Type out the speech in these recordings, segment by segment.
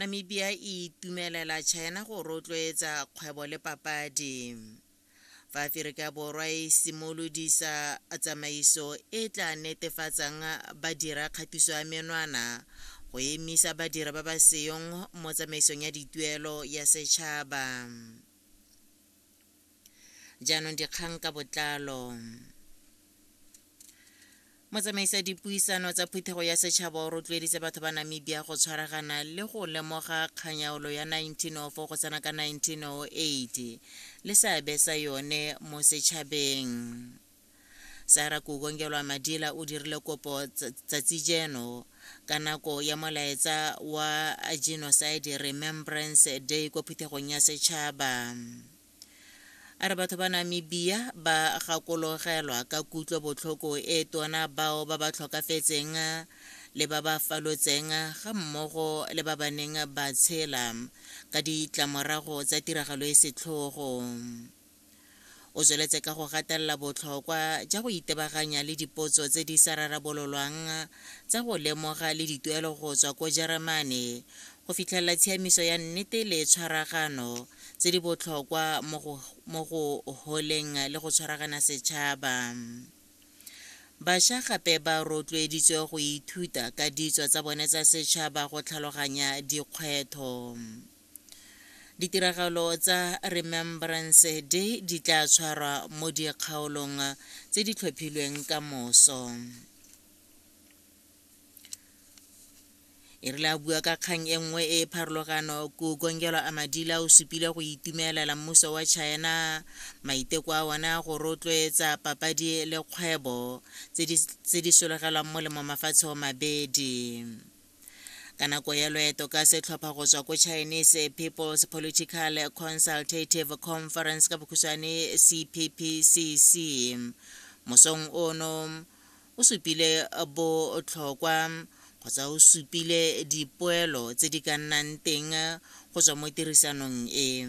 Namibia e itumelela China go rotloetsa kgwebo le papadi. Fa Aferika Borwa e simolodisa tsamaiso e tla netefatsang badira kgatiso ya menwana go emisa badira ba ba seyong mo tsamaisong ya dituelo ya setšhaba. Jaanong dikgang ka botlalo. motsamaisa dipuisano tsa phuthego ya setšhaba o rotloeditse batho ba namibia go tshwaragana le go lemoga kganyaolo ya 1904 go tsena ka 1908 le seabe sa yone mo setšhabeng Sarah Kukongelwa Madila o dirile kopo tsatsi jeno ka nako ya molaetsa wa Genocide Remembrance Day kwa phuthegong ya setšhaba. A re batho ba Namibia ba gakologelwa ka kutlo botlhoko e tona bao ba ba tlhokafetseng le ba ba falotseng ga mmogo le ba ba neng ba tshela ka ditlamorago tsa tiragalo e setlhogo. O tsweletse ka go gatelela botlhokwa ja go itebaganya le dipotso tse di sa rarabololwang tsa go lemoga le dituelo go tswa ko Jeremane go fitlhelela tshiamiso ya nnete le tshwaragano tse di botlhokwa mo go holeng le go tshwaragana setšhaba. Bašwa gape ba rotloeditswe go ithuta ka ditso tsa bone tsa setšhaba go tlhaloganya dikgwetho. Ditiragalo tsa Remembrance Day di tla tshwarwa mo dikgaolong tse di tlhophilweng ka moso. e rile a bua ka kgang e nngwe e e pharologano kukongelo a madila o supile go itumelela mmuso wa china maiteko a one a go rotloetsa papadi le kgwebo tse di solegelwang molemo mafatshe o mabedi ka nako ya loeto ka setlhopha go tswa ko chinese people's political consultative conference ka bokhutshwane cppcc mosong ono o supile botlhokwa kgotsa o supile dipoelo tse di ka nnang teng go tswa mo tirisanong e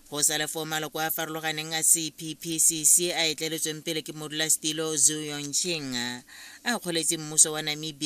go sa le foo maloko a farologaneng a cppcc a etleletsweng pele ke modulasetilo zu yongching a kgoletse mmuso wa namibia